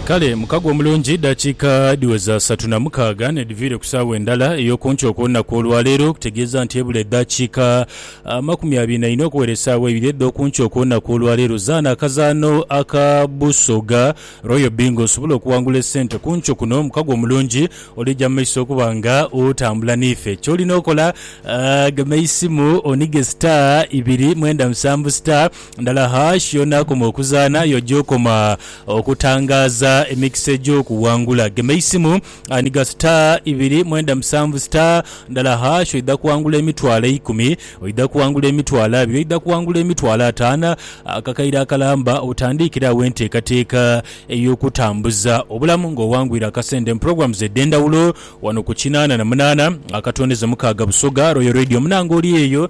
Kale mukago omulungi, dakiika dhiweza satu na mukaaga n'edhiviire ku saagho endala ey'okunkyo okw'olunaku olwaleero, okutegeeza nti ebula edhakiika amakumi abiri na ina okuwera esaagho eibiri edh'okunkyo okw'olunaku olwaleero. Zaana akazaano aka Busoga Royal Bingo osobole okuwangula esente ku nkyo kuno. Mukago omulungi olija mu maiso okuba nga otambula n'ife. Ky'olina okola, gema eisimu onige star ibiri mwenda musanvu star. Ndala Hash y'onaakoma okuzaana, y'oja okoma okutangaaza emikisa egy'okuwangula. Gema eisimu, ghanhiga star ibiri mwenda musanvu star, ndala hash, oidha kuwangula emitwalo eikumi, oidha kuwangula emitwalo abiri, oidha kuwangula emitwalo ataano. Ako kaire akalamba otandiikire agho enteekateeka ey'okutambuza obulamu ng'owangwire akasente mu programs edh'endhawulo wano ku kinaana na munaana akatondeza mukaaga Busoga Royal Radio. Munange oli eyo?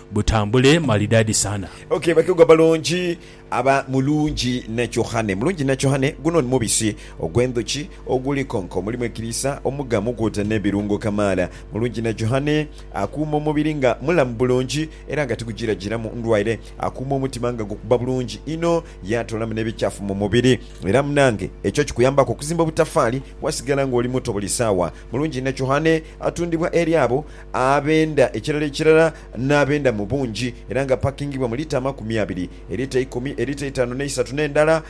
Butambule malidadi sana. Ok bakegwa balungi aba mulungi nacohane mulungi nacohane guno ni mubisi ogwendhuki oguli konka omulimu ekiriisa omugamu kwoota nebirungo kamaala mulungi nacohane akuuma omubiri nga mulamu bulungi era nga tigujirajiramu ndwaire akuuma omutima nga gukuba bulungi inho yatoolamu nebikyafu mumubiri era munange ekyo kikuyambaku okuzimba obutafaali wasigala nga oli muto buli saawa mulungi nacohane atundibwa eri abo ab'enda ekirala ekirala, n'ab'enda mu bungi, era nga pakingibwa mu lita amakumi abiri, elita eikumi, elita eitanu n'eisatu n'endala,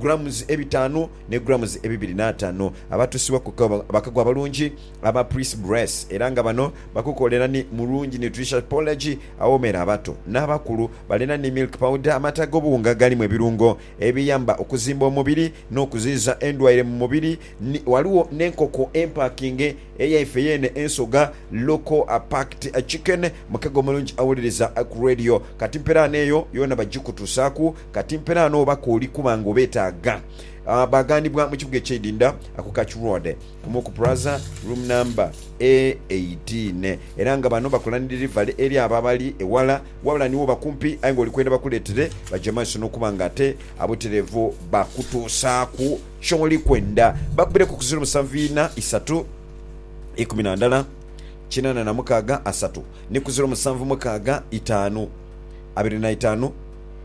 grams ebitaanu, ne grams ebibiri n'ataanu. Abatuusibwa ku kagho bakagho abalungi aba Pris Bress, era nga bano bakukolera ni mulungi nutritious porridge awoomera abato n'abakulu. Balina ni milk powder, amata ag'obuwunga agalimu ebirungo ebiyamba okuzimba omubiri n'okuziyiza endwaire mu mubiri. Ni, ghaligho n'enkoko empakinge eyaife yeene ensoga, local packed chicken, mukega omulungi awuliriza ku radio. Kati mperaano eyo yoona bagikutusaaku. Kati mperaano oba k'oli kuba nga obeetaaga. Ah, baaghanibwa mu kibuga eky'eidinda ku Catch Road, ku Mook Plaza, room number e eighteen. Era nga bano bakola ni delivery eri abo abali eghala, wabula ni woba kumpi aye nga oli kwenda bakuleetere, baja mu maiso n'okuba nga ate abutereevu bakutusaaku. Kyoli kwenda bakubireku ku ziro musanvu ina isatu ikumi na ndala kinana na mukaaga asatu, ni ku ziro musanvu mukaaga itaanu abiri na itaanu,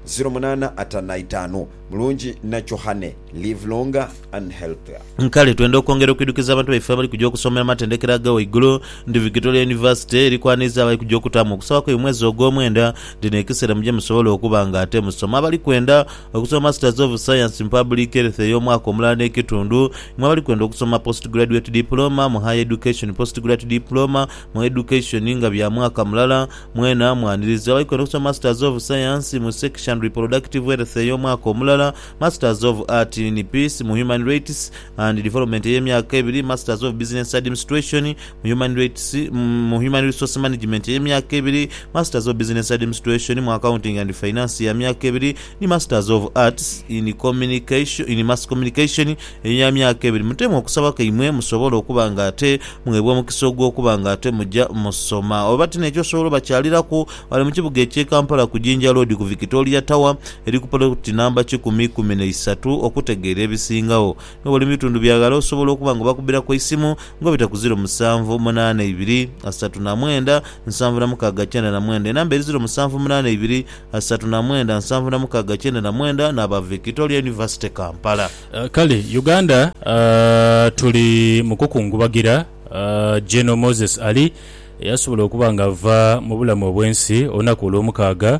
ziro munaana ataanu na itaanu. Mulungi na Johanne. Live longer and healthier. Kale twenda okwongera okwidhukiza abantu baife abali kuja okusomera mu matendekero aga waigulu nti Victoria University eri kwaniriza abali kuja okutaamu okusaba kwaibwe mu mwezi ogwomwenda. Dhino ekiseera muje musobole okuba nga ate musoma. Abali kwenda. Okusoma Masters of Science mu Public Health ey'omwaka omulala n'ekitundu, mwe abali kwenda okusoma Postgraduate Diploma mu Higher Education, Postgrate Diploma mu Education nga bya mwaka mulala, mwena mwaniriza. Abali kwenda okusoma Masters of Science mu Sex and Reproductive Health ey'omwaka omulala, Masters of Art in Peace mu Human Rights and Development ey'emyaka ebiri, Masters of Business Administration, mu Human Rights, mu Human Resource Management ey'emyaka ebiri, Masters of Business Admistration mu Accounting and Finance ya myaka ebiri ni Masters of Arts in Communication, in Mass Communication eya myaka ebiri. Mutemu okusaba kwaimwe musobole okuba nga ate mugheebwa omukisa ogw'okuba nga ate muja musoma. Oba ti n'ekyo osobola obakyaliraku ghale mu kibuga eky'e Kampala ku Jinja Road ku Victoria Tower eri ku poloti namba kikumi ikumi na isatu okutegeera ebisingagho. N'obwoli mu bitundu bya ghala osobola okuba nga obakubbiraku eisimu nga obita ku ziro musanvu munaana ibiri, asatu na mwenda, nsanvu na mukaaga kyenda na mwenda. Enamba eri ziro musanvu munaana ibiri, asatu na mwenda, nsanvu na mukaaga kyenda na mwenda n'aba Victoria University Kampala. Kale Uganda tuli mu kukungubagira General Moses Ali eyasobola okuba nga ava mu bulamu obw'ensi olunaku Olwomukaaga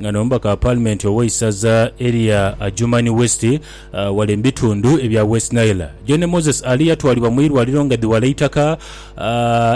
nga n'omubaka wa paalimenti ow'eisaza erya Adjumani West ghale mu bitundu ebya West Nile. John Moses Ali yatwalibwa mu irwaliro nga dhiwala eitaka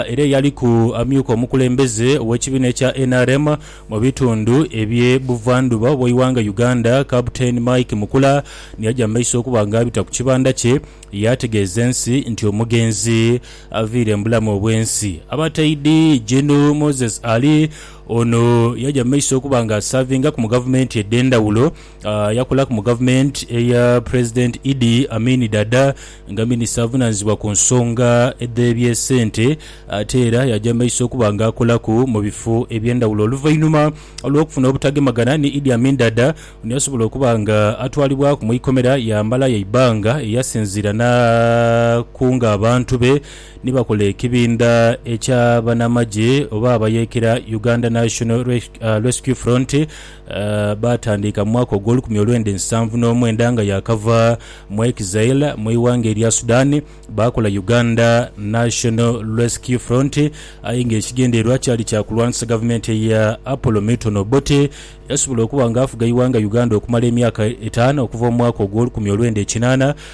era eyaliku amyuka omukulembeze ow'ekibiina ekya nrm mu bitundu ebye buvandhuba bw'eighanga Uganda Captain Mike Mukula niyaja mu maiso okuba nga abita ku kibanda kye yaategeeza ensi nti omugenzi aviire mu bulamu obw'ensi. Abataidi Gen Moses Ali Ono yaja mu maiso okuba nga asaavingaku mu gavumenti edh'endhawulo. Yakolaku mu gavumenti eya Pulezidenti Idi Amin Dada nga minisita avunaanyizibwa ku nsonga edh'ebyesente. Ate era yaja mu maiso okuba nga akolaku mu bifo eby'endhawulo. Oluvainhuma lw'okufuna obutagemagana ni Idi Amin Dada, ono yasobola okuba nga atwalibwaku mu ikomera yaamalayo eibanga eyasinziira n'akunga abantu be. ni bakola ekibindha ekya banamagye oba abayeekera Uganda National Rescue Front baatandiika mu mwaka ogw'olukumi olwenda ensanvu n'omwenda nga yaakava mu exile mu ighanga erya Sudan baakola Uganda National Rescue Front aye ng'ekigendererwa kyali kya kulwanisa gavumenti eya Apollo Milton Obote eyasobola okuba nga afuga ighanga Uganda okumala emyaka etaanu okuva mu mwaka ogw'olukumi olwenda ekinaana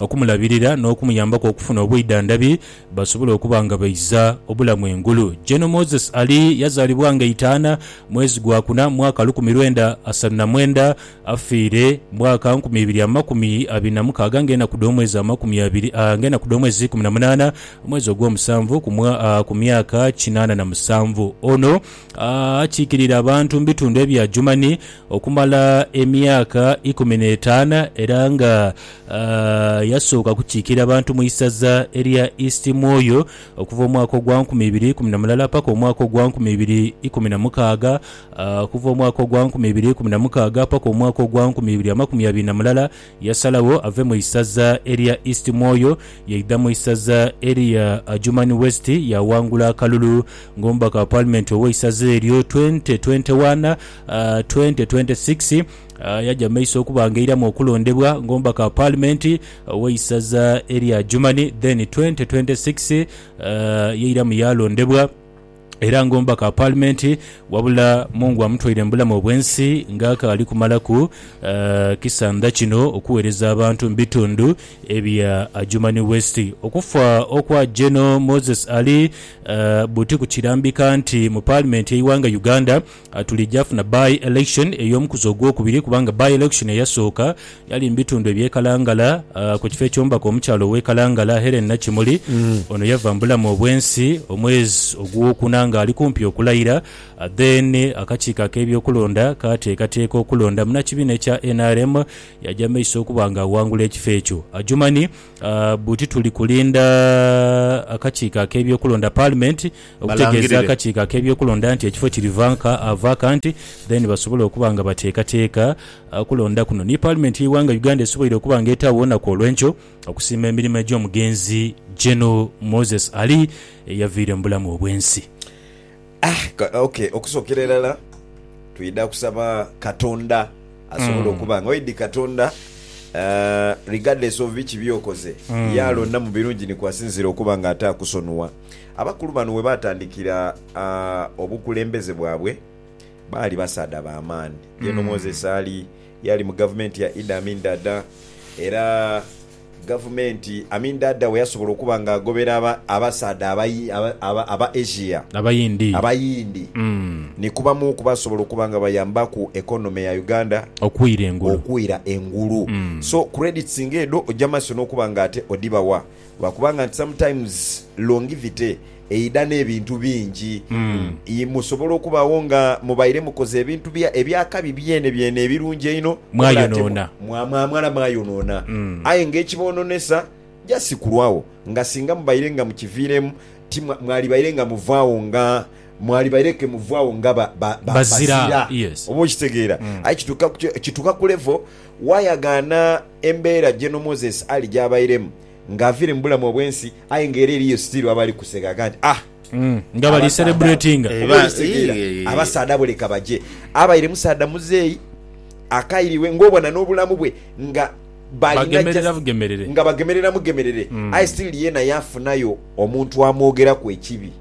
okumulabirira n'okumuyambaku okufuna obwidhandhabi basobole okuba nga baiza obulamu engulu. Gen. Moses Ali yazaalibwa nga Itaana mwezi gwa kuna mwaka lukumi lwenda asalu na mwenda, afiire mwaka nkumi ibiri amakumi abiri na mukaaga nga enaku dh'omwezi amakumi abiri nga enaku dh'omwezi ikumi na munaana omwezi ogw'omusanvu ku ku myaka kinaana na musanvu. Ono akiikirire abantu mu bitundu ebya Germany okumala emyaka ikumi n'etaana era nga Yasooka kukiikirira bantu mu isaza erya East Mwoyo okuva omwaka ogwa nkumi ibiri ikumi na mulala paka omwaka ogwa nkumi ibiri ikumi na mukaaga. Okuva omwaka ogwa nkumi ibiri ikumi na mukaaga paka omwaka ogwa nkumi ibiri amakumi abiri na mulala, yasalagho ave mu isaza erya East Mwoyo yaidha mu isaza erya Adjumani West yaawangula akalulu ng'omubaka wa Paalimenti ow'eisaza eryo, Twente twente wana, Twente twente sikisi. Yaja mu maiso okuba nga eiramu okulondebwa ng'omubaka wa Paalimenti ow'eisaza erya Adjumani, then 2026 yairamu yaalondebwa era ng'omubaka wa Paalimenti wabula Mungu amutwaire mu bulamu obw'ensi ng'akaali kumalaku kisandha kino okuweereza abantu mu bitundu ebya Adjumani West. Okufa okwa Gen Moses Ali Buti kukirambika nti mu Paalimenti y'eighanga Uganda, Tulija funa by, election ey'omukuzi ogwokubiri kubanga by, election eyasooka yali mu bitundu eby'e Kalangala ku kifo eky'omubaka omukyala ow'e Kalangala, Hellen Nakimuli. Ono yava mu bulamu obw'ensi omwezi ogwokuna ng'ali kumpi okulayira. Then akakiiko ak'ebyokulonda kaateekateeka okulonda munnakibiina ekya nrm yaja mu maiso okuba ng'awangula ekifo ekyo. Adjumani. Buti tuli kulinda akakiiko ak'ebyokulonda, Parliament, okutegeeza Balangirire. akakiiko ak'ebyokulonda nti ekifo kiri vanka, vacant, then basobole okuba nga bateekateeka ah, kulonda kuno. Ni Parliament y'eighanga Uganda esoboire okuba nga etaagho olunaku olw'enkyo okusiima emirimo egy'omugenzi Gen. Moses Ali eyaviire mu bulamu obw'ensi. Ah, ok, okusokera irala twidha kusaba Katonda asobole mm. okuba nga oidi Katonda uh, regardless of biki byokoze mm. yalonda mu birungi nikwasinzira okuba nga ate akusonua. Abakulu bano webatandikira uh, obukulembeze bwabwe baali basaadha ba maani. Yeno mm. Moses Ali yali mu gavumenti ya Idi Amin Dada era Gavumenti, I mean Dada weyasobola okuba nga agobera aba abasaadha aba aba Asia, Abayindi. Abayindi, Mm. ni ku bamu ku basobola okuba nga bayambaku economy ya Uganda Okwira engulu. okwira engulu. Mm. So credits nga edho oja maiso nokuba nga ate odhibawa lwakuba nga nti sometimes longivity. eidha n'ebintu bingi. I Musobola okubagho nga mubaire mukoze ebintu bya eby'akabi byene byene ebirungi einho, wabula ate mwa, Mwayonoona. mwa, mwamala mwayonoona. Aye ng'ekiboononesa just kulwagho nga singa mubaire nga mukiviiremu, ti mwa, mwalibaire nga muvaagho nga, mwalibaire ke muvaagho nga ba, ba, ba, Bazira, bazira. yes. Oba okitegeera? Aye kituuka ku ki, kituuka ku level wayagaana embeera General Moses Ali gy'abairemu, Nga avire mu bulamu obwensi aye nga era eriyo still abali kuseka gha nti ah Nga bali celebratinga. Abasaadha oba olisegeera abasaadha abo leka baje. Abaire musaadha muzeeyi akairiwe nga obona n'obulamu bwe nga balina Bagemerera just bugemerere. nga bagemerera mugemerere aye still yeena yafunayo omuntu amwogeraku ekibi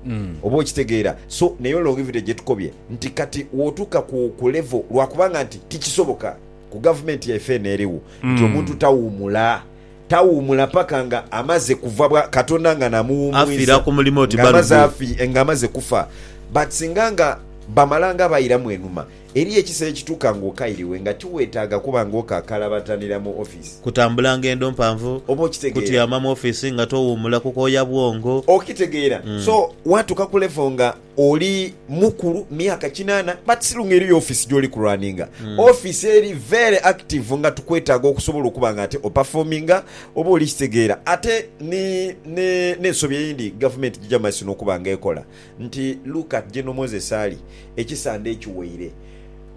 oba okitegeera so neyo longevity gyetukobye nti kati wotuuka ku ku level lwakubanga nti tikisoboka ku gavumenti yaife eno eriwo nti omuntu tawumula Tawuumula paka nga amaze kuva bwa Katonda nga na muwuumwiza nga amaze afi nga amaze kufa but singa nga bamala nga bairamu enhuma eriyo ekisera ekituuka nga okairiwe nga tiwetaaga kuba nga okakalabatanira mu office. Kutambula ngendo mpanvu. Oba okitegeera. Kutyama mu office nga towuumula kukooya bwongo. Okitegeera. So watuuka ku level nga. Oli mukulu myaka kinana but still nga eriyo office gyoli ku runninga. Office eri very active nga tukwetaaga okusobola okuba nga ate o performinga oba oli kitegeera. Ate ni ne nensobi eyindi gavumenti gyija mumaiso nokuba nga ekola nti look at General Moses Ali ekisande ekiweire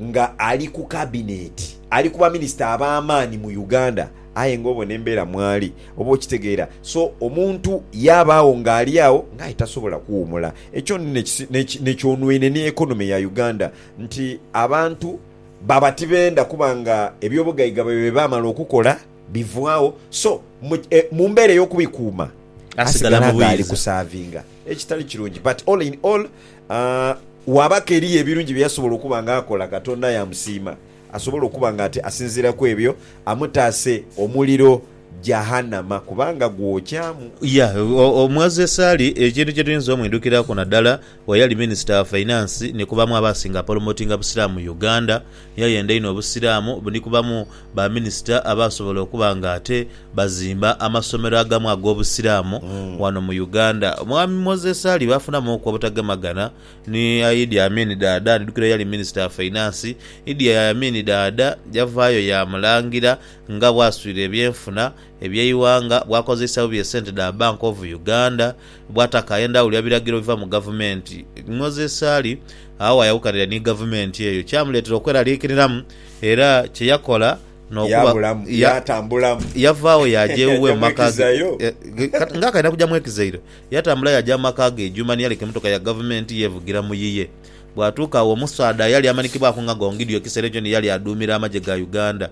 nga ali ku cabinet ali ku ba minister abamaani mu Uganda aye nga obona embera mwali. Oba okitegeera? So, omuntu yaabaagho ng'ali agho nga aye tasobola kuwuumula. Ekyo ni ne, ne kyonwine ni economy ya Uganda, nti abantu baba tibenda kuba nga eby'obugaiga byaibwe bye baamala okukola bivaagho, so mu, e, mu mbeera ey'okubikuuma, Asigala asigala mu nga ali bwiza. kusaavinga, ekitali kirungi. But all in all, ah, waabaku eriyo ebirungi bye yasobola okuba nga akola, Katonda yaamusiima. Asobola okuba nga ate asinziira ku ebyo amutaase omuliro Jahannama kubanga gwokyamu. Ya, omughazi esaali ekintu kye tuyinza omwidhukiraku nadala bwe yali Minisita wa Fainansi ni ku bamu abaasinga apolomotinga Busiraamu mu Uganda. Ni yayenda inho Obusiraamu, ni ku bamu ba Minisita abaasobola okuba nga ate bazimba amasomero agamu ag'Obusiraamu wano mu Uganda. Omwami Moses Ali baafunamuuku obutagemagana Ni Idi Amin Daada, Ndidhukira yali minisita wa fainansi. Idi Amin Daada yavaayo yaamulangira nga bwaswire ebyenfuna eby'eighanga, bwakozeisa bubi esente dha Bank of Uganda, bwataka endhawulo ya biragiro ebiva mu gavumenti. Moses Ali agho waayawukanira ni gavumenti eyo, kyamuleetera okweraliikiriramu era kye yakola n'okuba Yaabulamu, ya, yaatambulamu. yavaawo yaaja ewuwe mu maka ge, Yaamwekizayo. e, nga akaidha kugya mwekizaire. Yatambula yaaja mu maka ge Juma ni yaleka emotoka ya Gavumenti yeevugira mu yiye. Bwatuuka agho omusaadha eyali amanikibwaku nga Gongidio ekiseera ekyo ni yali aduumira amagye ga Uganda.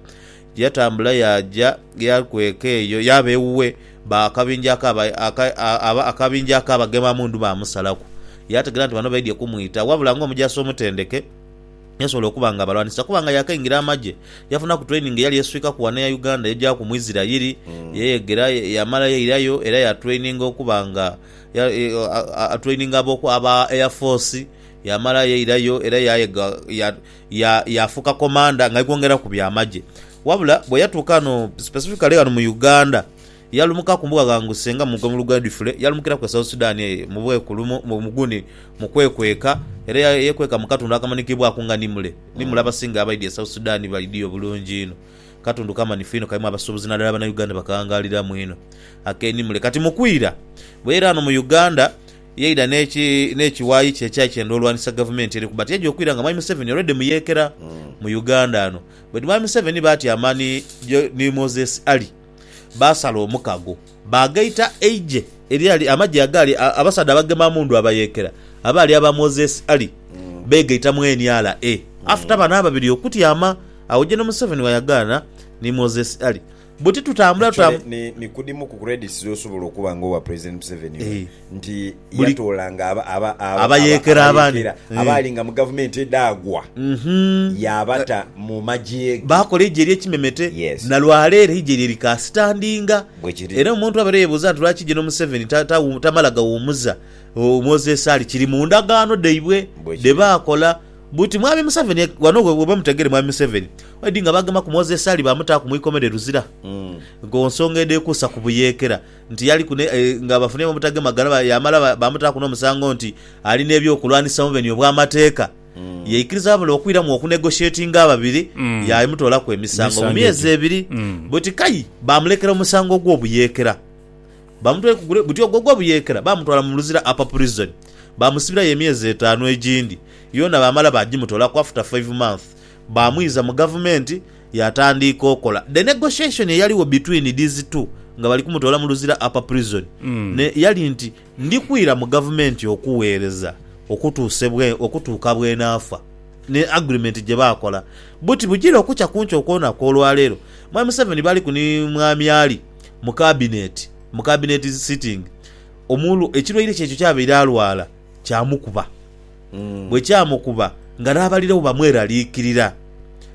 Yatambula yaaja yaakweka eyo yaaba ewuwe ba akabinja aka aba akabinja aka abagema mundu baamusalaku. Yaategera nti bano baidhye kumwita wabula ng'omujaasi omutendeke. yasobola okuba nga abalwanisa kuba nga yaakaingira amagye. Yafunaku training eyali eswikaku ghano eya Uganda yajaaku mu Isirayiri, yeyegera, yamala yairayo era yatraininga okuba nga atraininga aba Air Force. Yamala yairayo era yaayega, yaafuuka komanda nga aikwongeraku byamagye. Wabula bwe yatuuka ghano specifically ghano mu Uganda, Yalumuka ku mbuga ghanguse nga mugwe mu luguudo edhifule, yalumukiraku e South Sudan eyo mu bwekulumu muguni mu kwekweka, era yekweka mu katundu akamanikibwaku nga Nimule. Nimule abasinga abaidhye e South Sudan baidhye obulungi inho. Katundu kamanhifu inho kalimu abasuubuzi nadala Banauganda bakaghangaliramu inho ak'e Nimule. Kati mu kwira, bweyaira ghano mu Uganda, yaidha n'ekiwayi kye ekyai kyenda olwanisa gavumenti eriku but yaidha okwira nga Mwami Museveni already muyeekera mu Uganda ghano. But Mwami Museveni baatyama ni Moses Ali. Baasala omukago, baagaita eigye eryali, amagye agaali, abasaadha abagema mundu abayeekera, abaali aba Moses Ali, beegaita mu NRA after bano ababiri okutyama. Agho General Museveni ghayagaana ni Moses Ali buti tutambula, tutambula. Actually, ni, ni ku dhimu ku credits dh'osobola okuba nga owa President Museveni. Eeh. nti yatoolanga abayeekera abandi abaali nga mu gavumenti edhaagwa, yaabata mu magye ge. Baakola eigye ery'ekimemete, na lwa leero eigye lye likaasitandinga. Era omuntu abaire yeebuuza nti lwaki Gen Museveni tamala ghawumuza Moses Ali, kiri mu ndagaano dhaibwe dhe baakola. Buti Mwami Museveni, ghano we mutegeere Mwami Museveni edi nga baagemaku Moses Ali baamutaaku mu ikomera e Luzira ku nsonga edheekuusa ku buyeekera. nti yaliku ne, nga bafunhyemu obutagema ghalaba, yaamala baamutaaku n'omusango nti ali n'eby'okulwanisa mu beni obw'amateeka, yaikiriza abule okwiramu okunegotiatinga ababiri yaamutoolaku emisango mu myezi ebiri. Buti kai baamulekera omusango ogw'obuyeekera. Baamutwaiku gule, guti ogwo ogw'obuyeekera baamutwala mu Luzira Upper Prison, baamusibirayo emyezi etaanu egindi. Yoona baamala baagimutoolaku after five months. Baamwiza mu gavumenti yaatandiika okola. The negotiation eyaligho between these two nga bali kumutoola mu Luzira Upper Prison ne yali nti, Ndi kwira mu gavumenti okuweereza okutuuse bwe okutuuka bwenaafa. Ni agreement gye baakola. Buti bugira okukya ku nkya okw'olunaku olwaleero, Mwami Museveni baliku ni Mwami Ali mu kabineti, mu cabinet is sitting, omul, ekirwaire kye ekyo ky'abaire alwala kyamukuba. bwe kyamukuba ng'araabaliregho bamweraliikirira.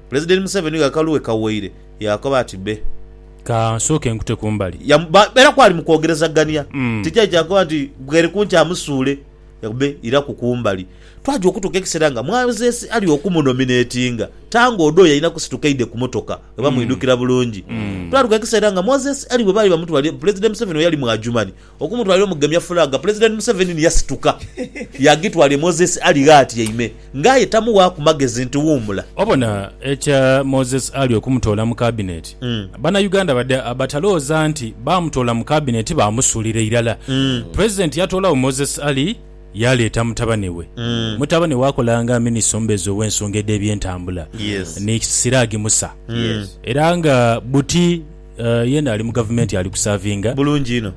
Pulezidenti Museveni nga akalu we kawoire yaakoba ati, Be. Ka nsooke nkute ku mbali. Yamubairaku ali mu kwogerezagania, tikyali kya kukoba nti, Bweri ku nkya musuule. Yagamba, Be, iraku ku mbali. Twaja okutuuka ekiseera nga Mwazeesi ali okumunominetinga, Tanga Odoi alina kusituka aidhe ku motoka oba mwidhukira bulungi. Twatuuka ekiseera nga Mwazeesi ali we baali bamutwaliire, Pulezidenti Museveni we yali mu Adjumani Okumutwalira omugemya fulaaga, Pulezidenti Museveni ni yasituka yaagitwala e Moses Ali gh'atyaime nga aye tamuwaaku magezi nti wuumula. Obona ekya Moses Ali okumutoola mu kabineti, Bannayuganda badha batalooza nti baamutoola mu kabineti baamusuulira irala. Pulezidenti yatoolawo Moses Ali yaaleeta mutabane we. Mutabane we akola nga minisita omubeezi ow'ensonga edh'ebyentambula ni Siraji Musa era nga buti, Yena ali mu gavumenti ali kusaavinga. Bulungi inho.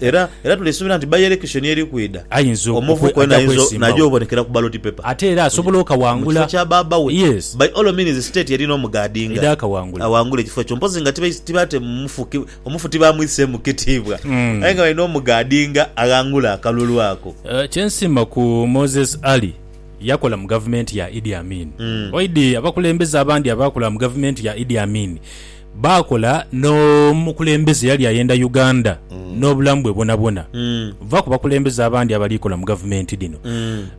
Era, era tuli suubira nti by election eri kwidha, Ayinza oku, omuvubuka oku, oyo ajja nainza naija kwesimbawo. obonekera ku ballot paper. Ate era asobola Mu kifo okawangula. kya baaba we. Yes. By all means state erina omugaadinga. Eda akawangula. Awangule ekifo ekyo. Mpozi nga tibai, tibate mufu, ki, omufu tibamwiseemu kitiibwa. Mm. Aye nga balina omugaadinga aghangule akalulu ako. Kye nsiima ku Moses Ali. Yakola mu gavumenti ya Idi Amin. Oidi abakulembeze abandi abaakola mu gavumenti ya Idi Amin baakola n'omukulembeze eyali ayenda Uganda n'obulamu bwe bwonabwona. Va ku bakulembeze abandi abali kola mu gavumenti dhino.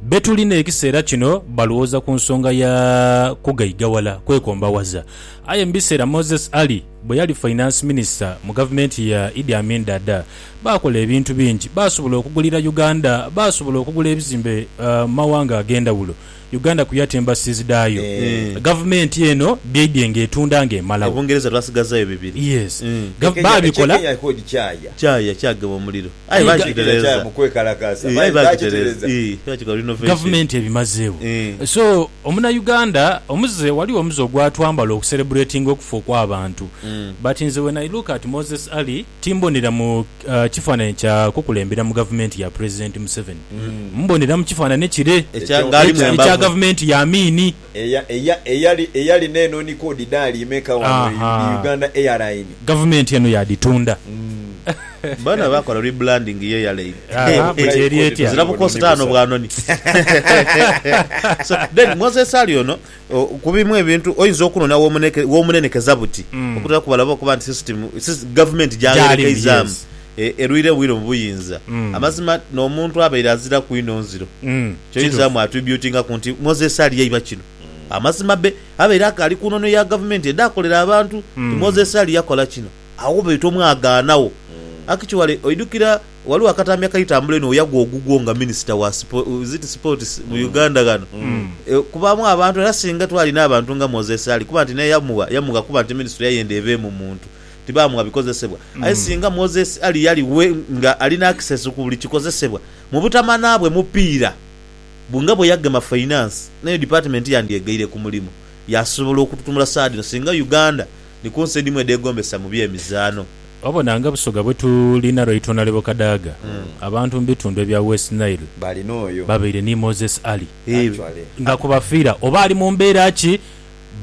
Be tuli n'ekiseera kino balowooza ku nsonga ya kugaigawala kwekombawaza. Aye mu biseera Moses Ali bwe yali Finance Minister mu gavumenti ya Idi Amin Dada, Baakola ebintu bingi. Baasobola okugulira Uganda, baasobola okugula ebizimbe mu mawanga ag'endhawulo. Uganda ku yata embassies dhaayo, gavumenti eno byaidye ng'etunda ng'emalawo. E Bungereza twasigazayo bibiri. Yes. Gav, baabikola. Kyaya, kyagema omuliro. Aye baakitereeza. Aye baakitereeza. Baakikola renovation. Gavumenti ebimazeewo. So, Omunauganda, omuze, ghaligho omuze ogwatwambala okucelebratinga okufa okw'abantu. But nze when I look at Moses Ali, Timbonera mu kifaananhi kya kukulembera mu gavumenti ya Pulezidenti Museveni. Mbonera mu kifaananhi kire ekya gavumenti ya Amini. Eyali n'eno ni koodi daali imeka wano mu Uganda Airline? Gavumenti eno yaadhitunda. Boona baakola rebranding ye airline. Eziraku kositaano bwanoni. So then Moses Ali ono Ku bimu ebintu oinza okunona w'omunenekeza buti okutera kubala oba okuba nti sisitimu gavumenti gy'agherekeizaamu erwire bwire mu buyinza. Amazima n'omuntu abaire aziraku inho nziro, ky'oinzamu atwibyutingaku nti Moses Ali yaiba kino. Amazima be abaire akaali ku nono ya gavumenti edhaakolera abantu nti Moses Ali yakola kino, agho baita omwagaanagho. Akitwale oidhukira. Ghaligho akatambi akaitambula einho weyagwa ogugwo nga minisita wa is it sports mu mm. Uganda ghano mm. e, kubaamu abantu era singa twalina abantu nga Moses Ali kuba nti naye yamugha yamugha kuba nti minisitule yayenda ebeemu muntu tibaamuwa bikozesebwa mm. aye singa Moses Ali yali we nga alina access ku buli kikozesebwa mu butamana bwe mupiira nga bwe yagema finance nayo department yandyegaire ku mulimu yasobola okututumula saadino singa Uganda ni ku nsi edhimu edhegombesa mu by'emizaano. Obona nga Busoga bwe tulina Lwaitwa na Lebo Kadaga, abantu mu bitundu ebya West Nile babaire ni Moses Ali. Nga ku bafiira oba ali mu mbeera ki,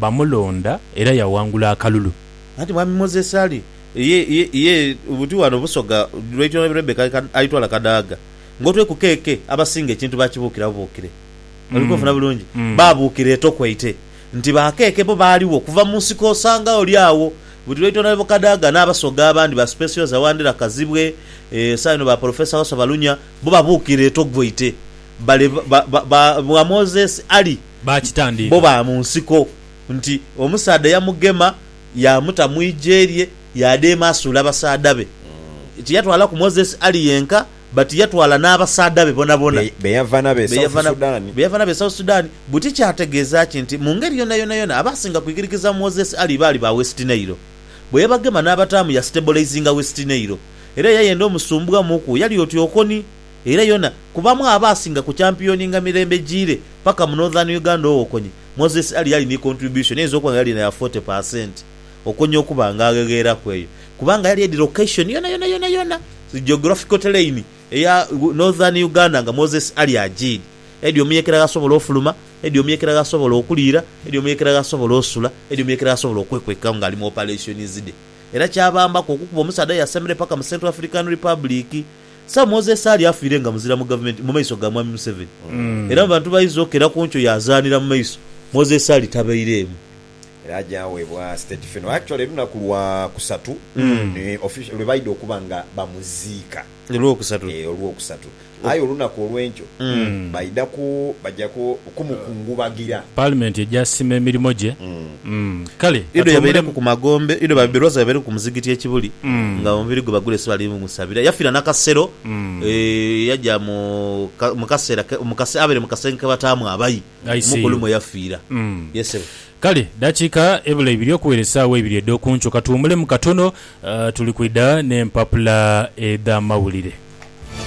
bamulonda era yawangula akalulu. Anti Mwami Moses Ali ye ye buti wano Busoga Lwaitwa na Lebo Rebecca Aitwala Kadaga. Nga otwekuka eke, abasinga ekintu bakibuukira bubuukire. Oli kunfuna bulungi? Babuukira etokwaite. nti baakeeke bo baaligho okuva mu nsiko osanga oli agho buli lwaitwa Nabebukadaaga n'Abasoga abandi ba Specioza Wandera Kazibwe ee esaa eno ba Polofeesa Wasswa Balunya bo babuukira e Togvoite bale ba ba ba bwa Moses Ali bo Baakitandiika. ba mu nsiko nti omusaadha yamugema yaamuta mu igye lye yaadeema asuule abasaadha be tiyatwalaku Moses Ali yenka But yatwala n'abasaadha be bonabona Be yava nabo e be South yava nabo Sudan. be yava nabo e South Sudan. Buti kyategeeza ki nti mu ngeri yonayonayona abaasinga kwikirikiza Moses Ali baali ba West Nile. Bwe yabagema n'abataamu yastabolizinga West Nile. Era eyayenda omusumbwa mu ku yali oti Okoni. Era yona kubamu abaasinga ku champiyoninga mirembe jiire paka mu Northern Uganda owokonye, Moses Ali yali ni contribution eyinza okuba nga yali na ya forty per cent. okonya okuba nga aghegheeraku eyo kubanga yali edi location yonayona yonayona, geographical terrain, eya Northern Uganda nga Moses ali ajiidi. Edi omuyekera ghasobola ofuluma, edi omuyekera ghasobola okuliira, edi omuyekera ghasobola osula, edi omuyekera ghasobola okwekwekagho nga ali mu operations dhe. Era kyabambaku okukuba omusaadha yasemere paka mu Central African Republic. Sir Moses Ali afiire nga muzira mu gavumenti mu maiso ga Mwami Museveni era mu bantu baiza okukera ku nkyo yazaanira mu maiso. Moses Ali tabeireemu. era aja webwa state funeral actually lunaku lwa kusatu ni official lwebaida okuba nga bamuziika Olwokusatu. eh olwokusatu aye olunaku olwenkyo baida ku baja ku kumukungubagira. Parliament eja sima emirimo gye mm kale Ido yabaireku katuwumulemu. ku magombe ido babe lwaza yabaireku ku muzigiti e Kibuli nga omubiri gwe bagulese bali musabira yafira nakasero eh yaja mu ka- mu kasera ke- mu kase abere mu kasenge kebataamu abayi. I see Omukulu you. mwe yafiira. Mm. Yes ssebo. Kale dakiika ebula ibiri okuwera esaawa eibiri edhokunkyo katuwumulemu katono, tuli kwidha n'empapula edh'amawulire.